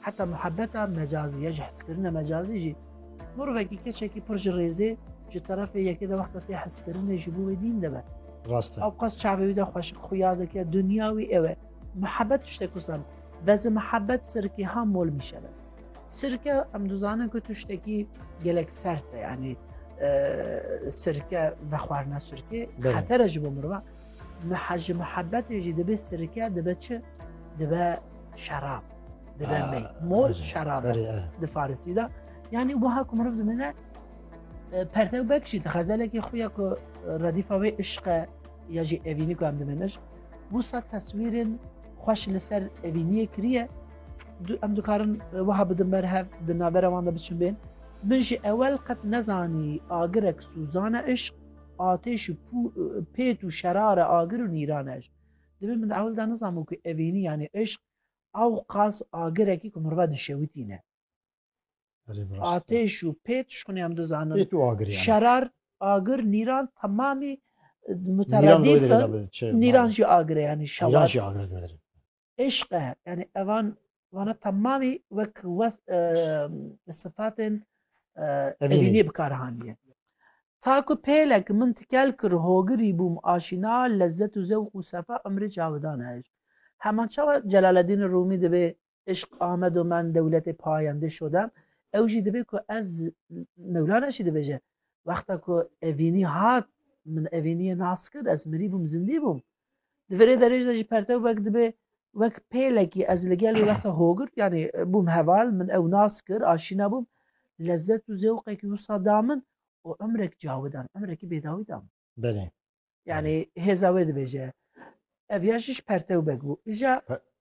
Heta muhebeta mecazî ya ji heskirina mecazî jî Morvekî keçekî pir ji rêzê ji terefê yekê de wexta tê heskirinê ji bo wê dîn debe. Rast e. Ew qas çavê wî de xweşik xuya dike, dinya wî ew e. Muhebet tiştek wisan. Vezi muhebet sirkê ha mol mîşebe. Sirke em dizanin ku tiştekî gelek sert e yanî sirke vexwarina sirkê xetere ji bo mirva. Mehe ji muhebetê jî dibe sirke dibe çi? Dibe şerab. Dibe mey. Mor şerab di farisî de. Yanî wiha ku miriv dimine pertew bek jî di xezelekî xwe ya ku redîfa wê îşqe ya jî evînî ku em diminiş. Wisa teswîrên xweş li ser evîniyê kiriye em dikarin wiha bidin ber hev di navbera wan de biçin bên. Min jî ewel qet nezanî agirek sûzane îşq Atêş û pêt û şerare agir û nîran e. Divê min di ewil de nizanbû ku evînî yanî îşq ewqas agirekî ku mirive dişewitî ne. Atêş û pêt ji xwinê em dizanin. Şerar, agir, nîran temamî muteredîf in. Nîran jî agir e yanî şewat. Îşq e, yanî evan vana temamî wek wes li sifatên evînî bikar haniye. Ta ku pêlek min tikel kir hogirî bûm aşîna lezzet û zewq û sefa umrê cawidan e îşq. Heman çawa Celaleddînê Rûmî dibê Îşq amed û men dewletê payendê şodem, ew jî dibê ku ez Mewlana jî dibêje, wexta ku evînî hat min evîniyê nas kir ez mirî bûm zindî bûm. Di verê derêj de jî pertev wek dibe wek pêlekî ez li gelê wexta hogirt yanî bûm heval min ew nas kir aşîna bûm lezzet û zewqekî wisa da min û emrek cawidan emrekî bêdawî da min. Belê. Yanî hêza wê dibêje. Ev ya jî ji pertew wek bû. Îja